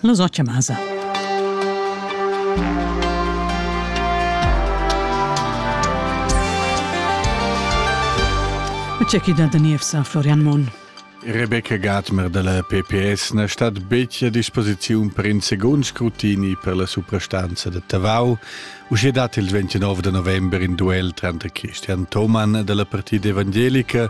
Los ocha masa. C'è da Daniel sa Florian Mon. Rebecca Gatmer della PPS na stat betg a disposiziun per in secund scrutini per la suprastanza da Tavau, uschè dat il 29 da november in duel tranter Christian Thomann della Partida Evangelica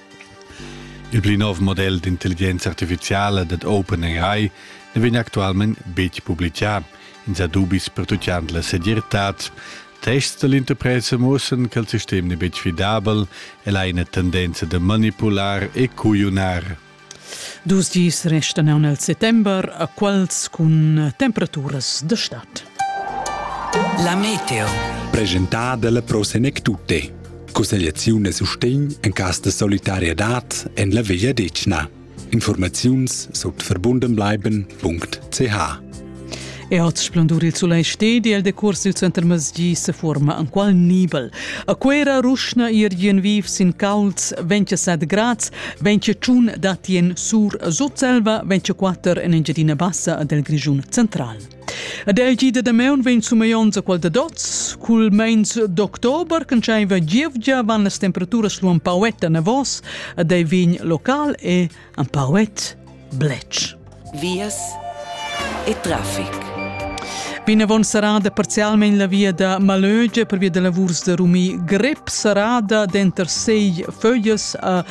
Il pli nov model d'intelligenza artificiala dad OpenAI ne vegn actualment betg publicà. Ins ha dubis pertuccant la segirtad. Tests dall'interpresa muossan che il sistem n'è betg fidabel, el ha ina tendenza da manipular e cugliunar. Dus dis restan aunc nel settember a quals cun temperaturas de stad. La meteo. Presentada la Prosenec Tutte. Cussegliaziun e sustegn en cas de solidariedad en la Vegliadetgna. Informaziuns sut verbundenbleiben.ch E oz splendur il sulei stedi el decurs il center masgi se forma an qual nibel. A quera ruschna ir gien viv sin cauls 27 grads, 21 datien sur sutselva, 24 en Engiadina Bassa del Grigiun central. Ed ei gi da damaun vegn sumeionts a quel da dots. Cul meins d'october, can scheinva gievgia, van las temperaturas lu un pauet anavos ed ei vegn local e un pauet bletsch. Vias e traffic. Vinavon sarada parzialmein la via da Malöge per via da lavurs da Rumi Grep sarada denter sei föglias a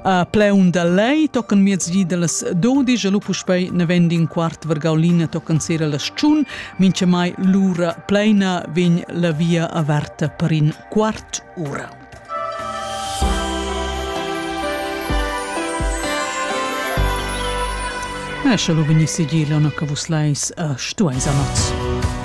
A pleun da lei tocan miezdi dallas dodisch e lu puspei neven in quart vargaulina tocan sera las tschun, minchamai l'ura pleina vegn la via averta per in quart ura. Esce lu vegni sigir, Leona, che vus leis uh, stueis amats.